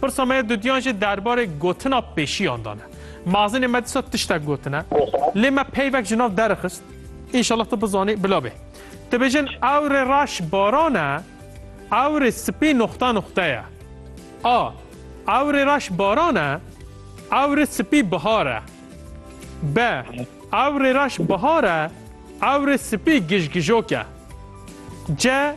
Pirsa me ya dudiyan jî derbarê gotina pêşiyan de ne. Mazinê me disa tiştek gotine. Lê me peyvek ji nav derixist. Înşallah tu bizanî bila bê. Dibêjin ewrê reş baran e, ewrê sipî noxta noxta ye. A. Ewrê reş baran e, ewrê sipî bihar e. B. Ewrê reş bihar e, ewrê sipî gijgijok e. C.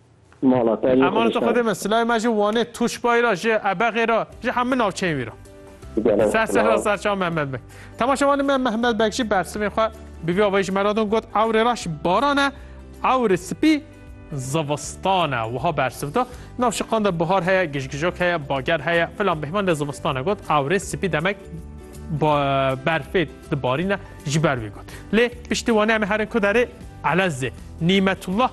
Mala te lê xwe Emaneta Xwedê me, silayê me ji Wanê, Tûşbayê re, ji Ebexê re, ji hemû navçeyên wî re. Ser serra ser çawa Mehmet Beg. Temaşevanê me Mehmet Beg jî bersivên xwe bi vî avayî ji me re din got ewrê reş baran e, ewrê spî zivistan e. Wiha bersiv da, Nav şiqan de bihar heye, gijgijok heye, bager heye, filan bêhman de zivistan e. Got ewrê spî demek berfê dibarîne ji ber wî got. Lê piştî Wanê em ê herin ku derê Elezê. Nîmetullah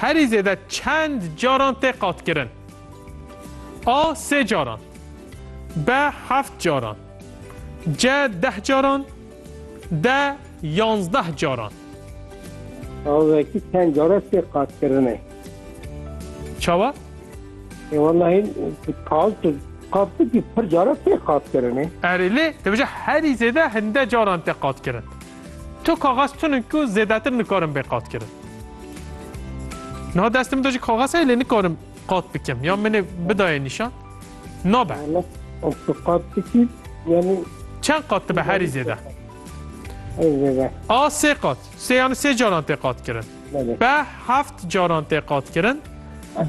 Herî zêde çend caran tê qatkirin? A sê caran B heft caran C deh caran D yanzdeh caran Aveki çend caran tê qatkirin e? Çawa? E wallahî kal tu qatki pir caran tê qatkirin e. Erê lê dibêje herî zêde hinde caran tê qatkirin. Tu kaxez tun in ku zêdetir nikarim bê qatkirin. Niha destê min de jî kaxez heye lê nikarim qat bikim ya min ê bidayê nîşan. Nabe. Tu qat bikî yanî Çend qat dibe herî zêde? ez zêde. A sê qat. Sê yanî sê caran tê qatkirin. Belê. Be heft caran tê qatkirin.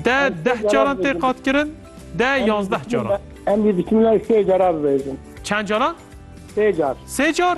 De deh caran tê qatkirin. De yanzdeh caran. Em dî biçim lay sê cara bibêjin. Çend caran? Sê car. Sê car?